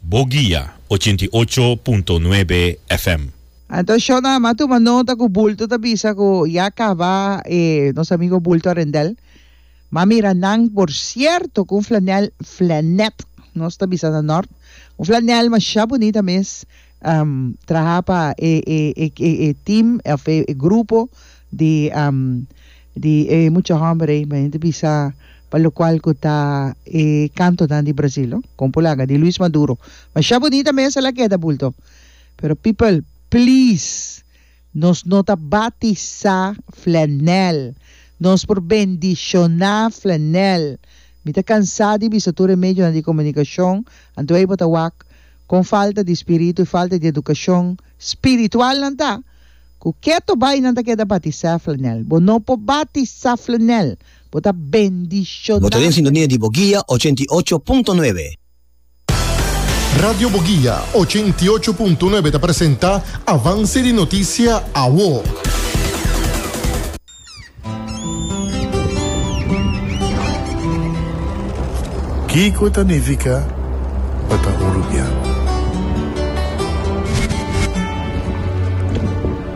Bo guia ochenta i ocho punto nuebe FM. Anto Shaw na ama tuma nota ku bulto ta bisa ku ya kaba e nos amigo bulto rendel. Ma mira nan por sierto ku un flanel flanet nos ta bisa na nort. Un flanel masha bunita mes. traha pa e e team of e grupo di di e mucha homber ey men hende bisa pa lo cual cu ta e cantonan di Brasil no con por laga di Luis Maduro masha bonita mesa la keda bulto pero people please Nos no ta batisá flanèl. Nos por bendishoná flanèl. Mi ta kansá di bisa tur e medionan di komunikashon, anto ei bo ta wak kon falta di spiritu i falta di edukashon spiritual nan ta, ku ke to bai nan ta keda batisá flanèl. Bo no por batisá flanèl, bo ta bendishoná flanèl. Bo ta den sintonia di bo guia ochenta i ocho punto nuebe. Radio Boguia, ochenta i ocho punto nuebe ta presenta Avance di Noticia, awo. Kiko ta nifica pa ta un rubian?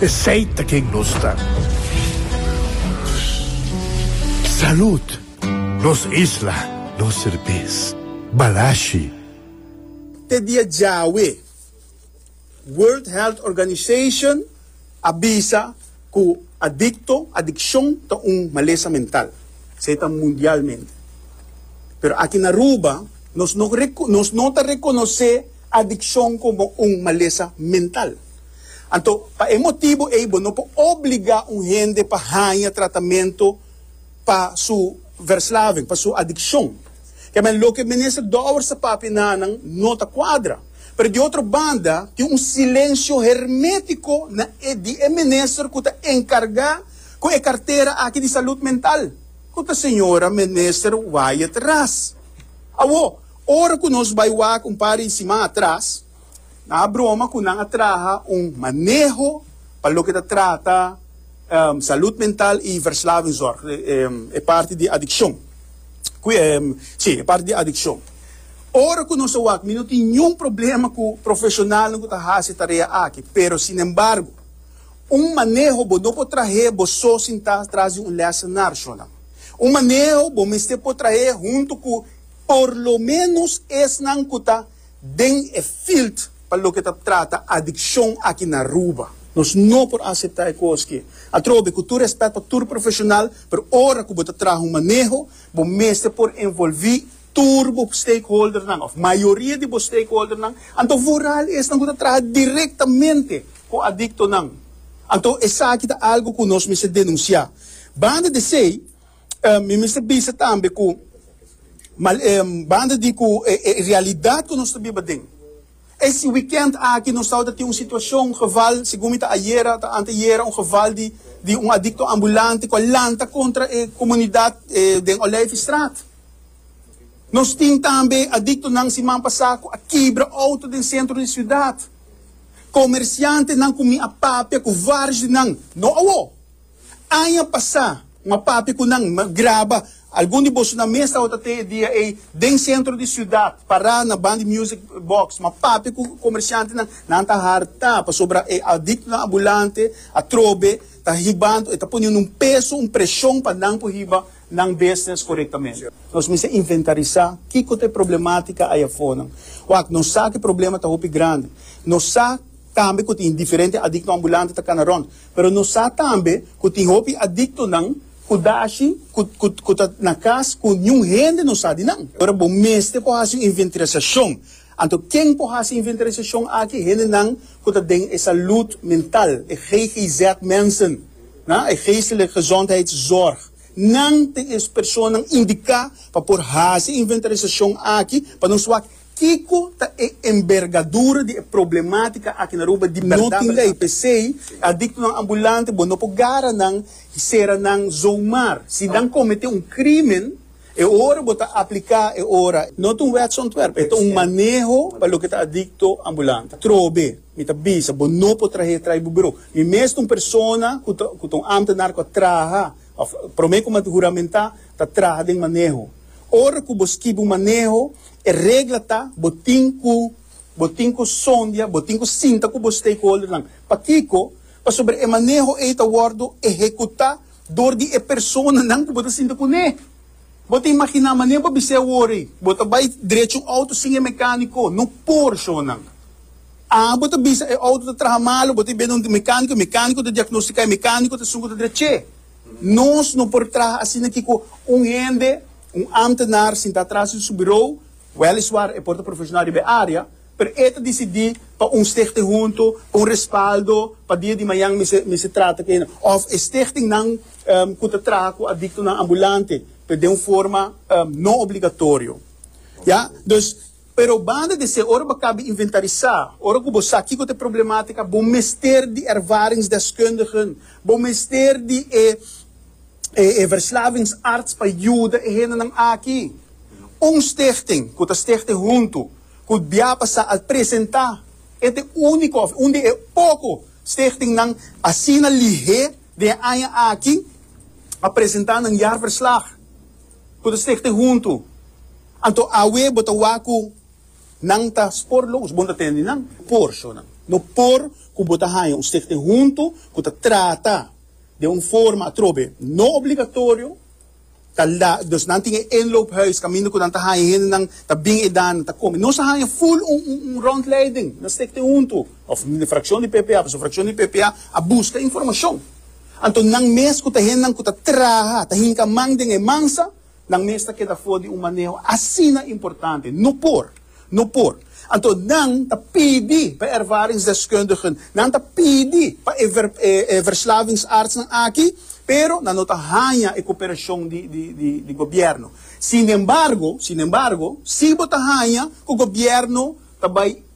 Esey ta ken nos ta. Salud! Nos isla, nos serbes. Balashi. Te dia djawe, World Health Organization a bisa cu adicto, adiccion, ta un malesa mental. Esey ta mundialmente. Pero aki na Aruba nos no ta reconoce adiccion como un malesa mental. Anto, pa e motibu ei bo no por obligá un hende pa haña tratamento pa su verslaving, pa su adikshon. Ke men, loke Minister Dowers a papia nanan no ta kuadra. Pero di otro banda, tin un silensio hermétiko na e di e minister ku ta enkargá ku e kartera aki di salud mental, ku ta señora Minister Wyatt Ras. Awo, ora ku nos bai wak un par di siman atras, Nan a broma cu nan a traha un maneho pa loke ta trata salud mental y verslavingzorg, e parti di adiccion. Si, e parti di adiccion. Ora cu nos a wak, mi no tin niun problema cu profesionalnan cu ta haci e tarea aki, pero sinembargo, un maneho bo no por trahe bo so sin ta tras di un lessen nar shonan. Un maneho bo mester por trahe hunto cu por lo menos esnan cu ta Den e field pa loke ta trata adiccion aki na Aruba nos no por acepta e cos ke. Atrobe, cu tur respet pa tur profesional, pero ora cu bo ta traha un maneho, bo mester por envolvi tur bo stakeholdernan of mayoria di bo stakeholdernan, anto vooral esnan cu ta traha directamente cu adictonan. Anto esaki ta algo cu nos mester denuncia. Banda desey, Em, mi mester bisa tambe ku mal, em, banda di ku e, e realidat ku nos ta biba den. E si wikènt aki nos tabata tin un situashon, un geval, segun mi ta ayera, ta anteayera, un geval di di un adikto ambulante ku a lanta kontra e komunidat e den Olijfstraat. Nos tin tambe adiktonan siman pasá ku a kibra outo den sentro di siudat. Komersiantenan ku mi a papia ku vários di nan, no awo. Aña pasá, un a papia ku nan, mi a graba. Algun di boso nan mes tabata te e dia ei den sentro di siudat, pará na bandi music box. Mi a papia ku komershantenan, nan ta hartá pasobra e adiktonan abulante atrobe ta hibando. E ta poniendo un peso, un preshon pa nan por hiba nan business korektamente. Nos mester inventarisá kiko ta e problemátika ei afornan. Wak, nos sa ku e problema ta hopi grandi. Nos sa tambe ku tin diferente adikto ambulante ta kana rònt. Pero nos sa tambe ku tin hopi adiktonan ku dashi ku ta na kas ku niun hende no sa di nan. Ora bo mester por hasi un inventarasashon, anto ken por hasi inventarasashon aki? Hendenan ku ta den e salud mental, e GGZ-mensen, e geestelijke gezondheidszorg. Nan ta e personanan indiká pa por hasi e inventarasashon aki pa nos wak Kiko ta e enbergadura di e problematica aki na Aruba di berdad berdad? No tin ley, pesey adictonan ambulante bo no por gara nan y cera nan zomaar. Si nan comete un crimen, e ora bo ta aplica e ora. No ta un wetsontwerp, e ta un maneho pa loke ta adicto ambulante. Trobe, mi ta bisa, bo no por trahe tray bo bureau. Mi mes ta un persona cu ta cu ta un ambtenaar cu a traha of prome como a huramentá ta traha den maneho. Ora cu bo skibi un maneho, E regla ta bo tin ku bo tin ku sondia, bo tin ku sinta ku bo stakeholdernan. Pakiko? Pasobra e maneho ei ta wòrdu ehekutá dor di e personanan ku bo ta sinta kuné. Bo ta imaginá manera bo bis'é awor-ei, bo ta bai drechi un outo sin e mekániko? No por, shownan. A bo ta bisa e outo ta traha malu, bo ta biaha donde un mekániko, e mekániko ta diagnostiká, e mekániko ta sungu ta drech'é. Nos no por traha asina ki ku un hende. Un ámtenar sintá tras di su burou, wèliswaar e por ta profeshonal riba e área, pero e ta disidí pa un stichting huntu, pa un respaldo, pa dia di mañan mester mester trata ku hende. Òf e stichtingnan ku ta traha ku adiktonan ambulante, pero den un forma no obligatorio. Ya. Dus. Pero banda di esei, ora bo a kabi inventarisá, ora ku bo sa kiko ta e problemátika, bo mester di ervaringsdeskundigen, bo mester di e e verslavingsarts pa yuda e hendenan aki. Un stichting ku ta stichte huntu ku Diapasa al presentá e ta e úniko òf un di e poko stichtingnan asina lihé den e aña aki a presentá nan jaarverslag. ku ta stigte huntu. Anto awe bo ta wak ku nan ta spor lo us, bo no ta tende nan. Por so nan. No por ku bo ta haña un stigte huntu ku ta trata den un forma atrobe no obligatorio, ta la, dus nan tin e inloophuis kaminda ku nan ta haña hendenan ta bin edan, nan ta kome. Nos a haña ful un un rondleiding na stigte huntu, òf frakshon di ppa, pasobra frakshon di ppa a buska informashon Anto nan mes ku ta hennan ku ta traha, ta hinka man den e mansa, nan mes ta keda for di un maneho asina importante. No por! No por! Anto nan ta pidi pa e ervaringsdeskundigen, nan ta pidi pa e e verslavingsartsnan aki, pero nan no ta haña e koperashon di di di di gobièrnu. Sinembargo, sinembargo, si bo ta haña ku gobièrnu ta bai